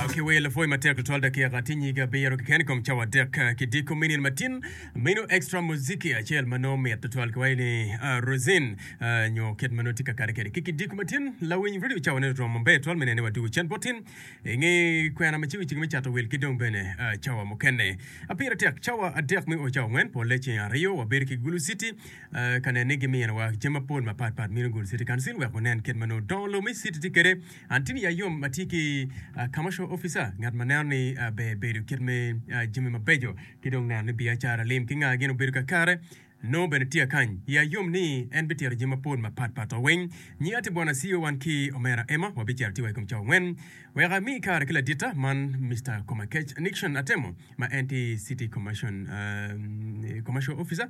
ki wel lapwoy matek tutwal dakika tye nyige abiro keken i kom cawa adek eh, ki diko minin matin minu extra muziki acel ma nongo mit tutwal ki waci ni ah, rosin ah, nyo kit ma nongo tye ka kare kwede ki kidiko matin lawiny redio cawane romo maber twal me nene wadwogo cen bot tin i nge kwena ma cego cege me cato wil ki dong bene ah, cawa mukene apira tek cawa adek me o cawa ngwen pole ceng aryo wabedo ki gulu city ah, ka nene ni giminowa jami mapol mapatpat minu gulu city council wek wunen kit ma nongo dongo lobo me city tye kwede Antini Yayom ma tye ki Commercial Officer, ngat ma neno ni ber bedo kit me jami mabeco ki dong neno ni biacara, lim ki nga gin obedo kakare, nongo bene tye akany. Yayom ni en bitito jami mapol mapat pat wa weng. Nyinga tye Bwana Siyo, wan ki Omera Emma wabicito atika i kom cawa angwen. Wek ami kare ki laditta man Mister Komakech Nixon Atemo ma en tye City Commercial Officer.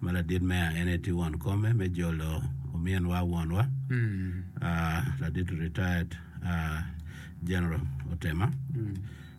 ma ladit meya en aye tye won kome me jolo ominwa wonwa ladit retired General Otema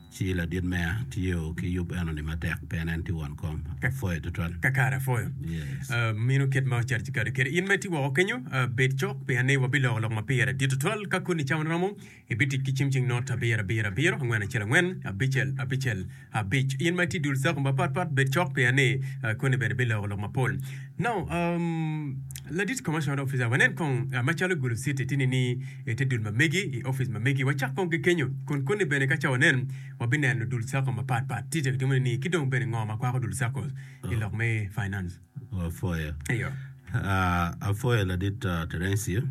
ci ladit meya tye o ki yub eno ni matek pien en tye won kom apwoyo tutwal. Kakare apwoyo. Yes. Ah, mino kit ma ocarci kade kede in ma itye woko kenyo, ah, bed cok pien ni wabiloko lok ma pire dit tutwal ka koni cawa ni romo. Ibitic ki cim cing not abiro abiro abiro angwen acel angwen abicel abicel abic. In ma itye dul cako mapat pat bed cok pien ni koni bene biloko lok mapol. Now, um, ladit commercial officer, wanen kong macalo Gulu City tye nining ite dul ma megi i office ma megi. Wacak kong ki kenyo. Kun koni bene ka ca wanen, wabineno dul cako mapat pat tye kitimo nining ki dong bene ngo ma kwako dul cako i lok me finance. Apwoyo. Iyo. Ah, apwoyo ladit Terencio.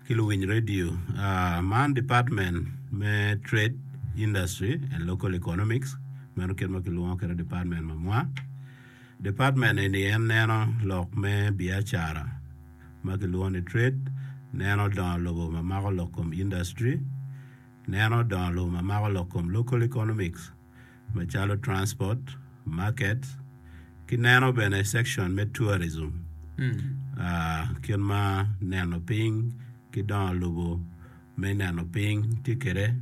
ki luwiny radio. Man department me trade, industry and local economics meno kit ma kilwongo kwede department ma mwa. Department eni en neno lok me biacara ma kilwongo ni trade, neno dongo lobo ma mako lok kom industry, neno dongo lobo ma mako lok kom local economics. macalo transport, market ki neno bene section me tourism kit ma neno piny ki dongo lobo me neno piny tye kwede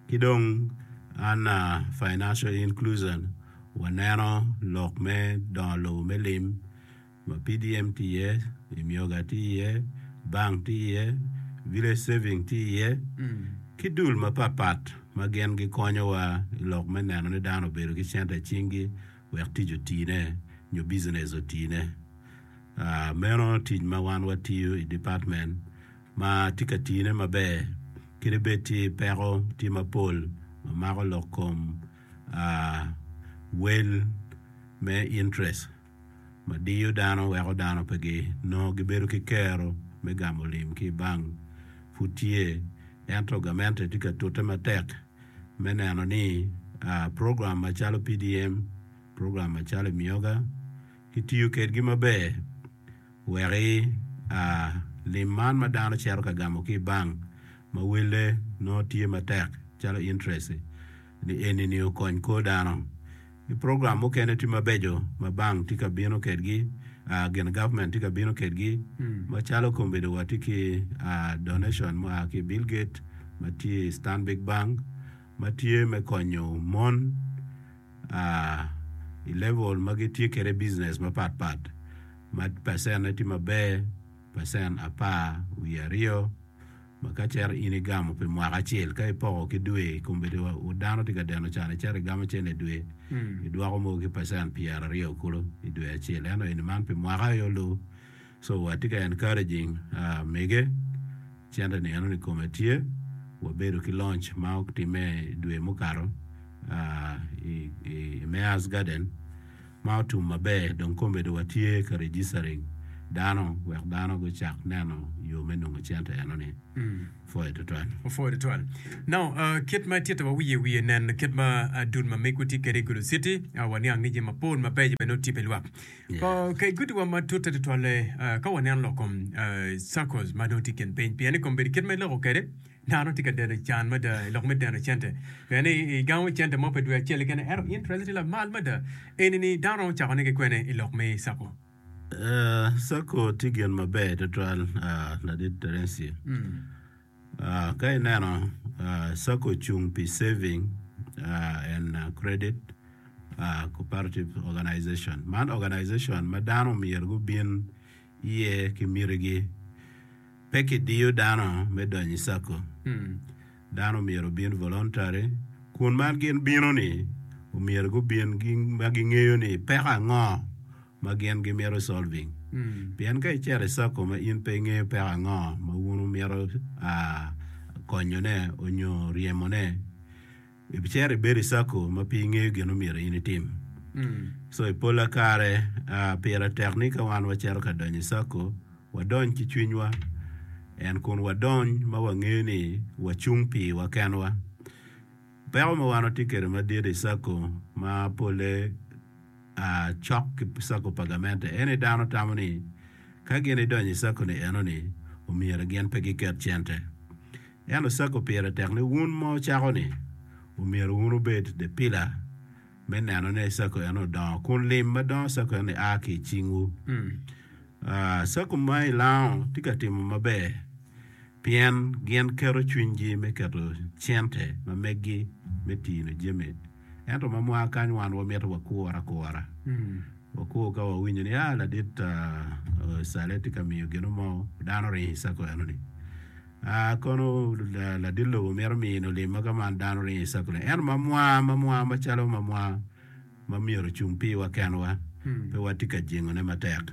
ki dong an financial inclusion waneno lok me dongo lobo me lim. Ma PDM tye iye, Imyoga tye iye, Bank tye iye, Village Saving tye iye, ki dul mapat pat ma gin gikonyowa i lok me neno ni dano obedo ki cente i cinggi wek tic otine nyo bicinec otine. Meno tic ma wan watiyo i department ma tye ka tine maber kadi bed tye peko tye mapol ma mako lok kom wel me interest. ma diyo dano weko dano pe ginongo gibedo ki kero me gamo lim ki i bank pud tye, ento gamente tye ka tute matek me neno ni program macalo PDM, program macalo Emyoga kitiyo kwedgi maber wek lim man ma dano cito ka gamo ki i bank ma welle nongo tye matek calo interest-ti. ni enini okony kor dano. Ki program mukene tye mabeco ma bank tye ka bino kedgi, aa, gin government tye ka bino kedgi, macalo kombedo watye ki, aa, donation mua ki i Bill Gate ma tye i Stanbic Bank ma tye me konyo mon, aa, i level ma gitye kwede business mapat pat ma percent ne tye maber, percent apar wiye aryo. Ma ka cere in igamo pi mwaka acel, ka ipoko ki dwe, kombeddi wa u dano tye ka deno can, icito igamo cen i dwe, idwoko mogo ki percent pyera aryo kulu i dwe acel. Ento eni man pi mwaka ayo lu. So wa tye ka encouraging mege, cente ni enoni kome tye, wa bedo ki launch ma otime i dwe mukato i Mayor's Garden. Ma otum maber dong komedo wa tye ka registering dano wek dano gu cak neno yo me nongo cente eno ni. Opwoyo tutwal. Opwoyo tutwal. Now kit ma ititta wa wiye wiye nen kit ma dul ma migwa tye kede i Gulu city wa niang ni jami mapol ma beco bene otye pi lwak. Kay guti wa ma tutte tutwalle ka wa neno lok kom circles ma dong tye i kin piny pien ni kom bedo kit ma iloko kede Dano tye ka deno can mada i lok me deno cente. Pien ni igamo cente mo pi dwe acel kene, ento interest tye lamal mada. Eni ni dano romo cako nigi kwene i lok me sacco? Ee, sacco tye gin maber twatwal Ladit Terence. Ka ineno, sacco ocung pi saving and credit cooperative organization. Man organization ma dano myero gubin. iye ki mitigi. Pe kidiyo dano me donyo i Sacco. Dano myero obin voluntary kun ma gin bino ni omyero gubin ma gingeyo ni peko ango ma gin gimito solving. Pien ka icito i Sacco ma in pe ingeyo peko ango ma wun wumito konyo ne onyo ryemo ne Ibicito ibedo i circle ma pe ingeyo gin omyero in itim. So i pola kare pire tek ni ka wan wacito ka donyo i circle wadony ki cwinywa and kun wadony ma wangeyo ni wacung pi wa kenwa. Peko ma wan watye kwede madit i circle ma pole cok ki circle pa gamente en ni dano tamo ni ka gin idonyo i circle-li eno ni omyero gin pe giket cente. En osago pire tek ni wun ma wucako ni, Omyero wun wubed depila me neno ni sako eno odongo, kun lim ma dongo sako eno-ni a ki i cingwu. Ah, sako ma i Laon tye ka timo maber pien gin keto cwinygi me keto cente ma meggi me tino jami. Ento ma mwaka kany wan wamito wakur akura. Wakur ka wawinyo ni, ah, ladit Ocale tye ka miyo gino mo, dano oringo i cako enoni. Ah, kono ladit lobo mito mino olimma ka man dano oringo i cako leng. Ento ma mwa, ma mwa macalo ma mwa ma myero ocung piwa kenwa, pe watye ka jengone matek.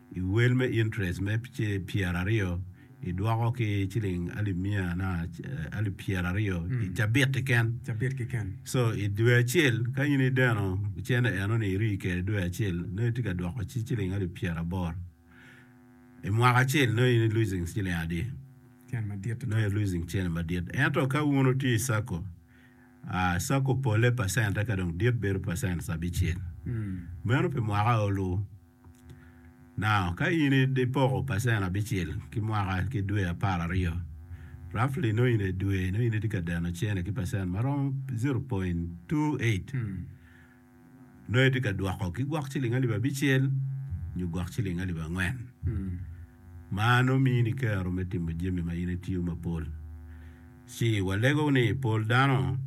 I wel me interest me pyera aryo i dwoko ki ciling alip mia alip pyera aryo i cabit kiken. Cabit kiken. So i dwe acel ka in ideno cene eno ni iri kede dwe acel no itye ka dwoko ci ciling alip pyera aboro. I mwaka acel no in i losing ciling adi? Cene madit. No i losing cene madit. Ento ka wun utye i sako, uh, sako pole percent eka dong dit bedo percent abicel. Meno pi mwaka olu. Now, ka in ipoko pacen abicel ki mwaka ki dwe apar aryo, roughly nongo in dwe nongo in itye ka deno cene ki pacen ma romo zero point two eight. Nongo itye ka dwoko ki gwok ciling alip abicel nyo gwok ciling alip angwen. Ma nongo mini kero me timo jami ma in itiyo mapol. Ci walego ni pol dano,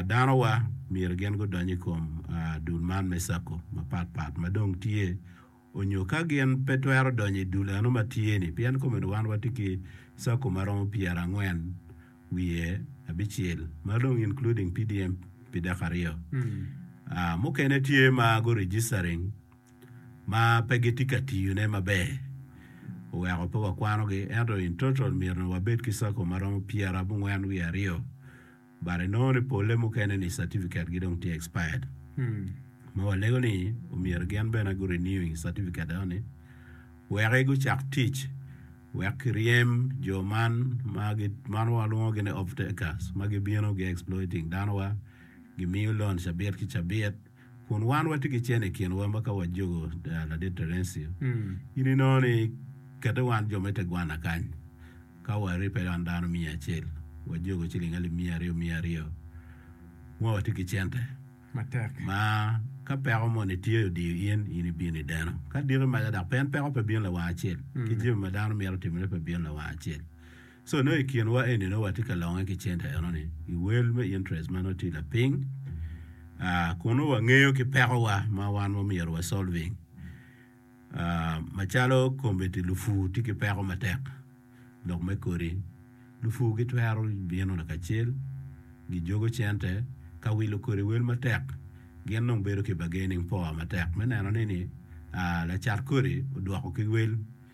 danowa, myero gin gudony i kom dul man me cako mapat pat ma dong tye, onyo ka gin pe twero donyo i dul eno ma tye-ni, pien komeno wan watye ki cako ma romo pyerangwen wiye abicel, ma dong including PDM pi dek aryo. Mukene tye ma gu-registering. ma pe gitye ka tiyone maber oweko pe wakwanogi. Ento in total myero wabed ki circle ma romo pyerabongwen wiye aryo but inongo ni pole mukene ni certificate gi dong tye expired ma walego ni omyero gin bene gu renewing certificate enoni weki gucak tic wek kiryem jo man ma man walwongogi ni off takers ma gibino gi exploiting dano wa gimiyo loan cabit ki cabit. kun wan watye ki cen i kinwa ma ka wajogo Ladit Terencio, in inongo ni kete wan jo me tegwanna kany, ka waribbe wan dano miya acel, wajogo ciling alip miya aryo miya aryo, ma watye ki cente. Matek. Ma ka peko moni tye odiyo in, in ibino i deno. Ka diki maca dok pien peko pe bino lawang acel, ki jami ma dano mito timone pe bino lawang acel. So nongo i kin wa eni nongo watye ka longe ki center eno ni i wel me interest ma nongo tye lapiny uh, kun nongo wangeyo ki peko wa ma wan wa myero wa solving uh, macalo kombeddi lupu tye ki peko matek lok me kodi lupu gi twero bino lakacel gi jogo center ka wilo kodi wel matek gin nongo bedo ki bargaining power matek me neno ni ni uh, lacat kodi odwoko ki wel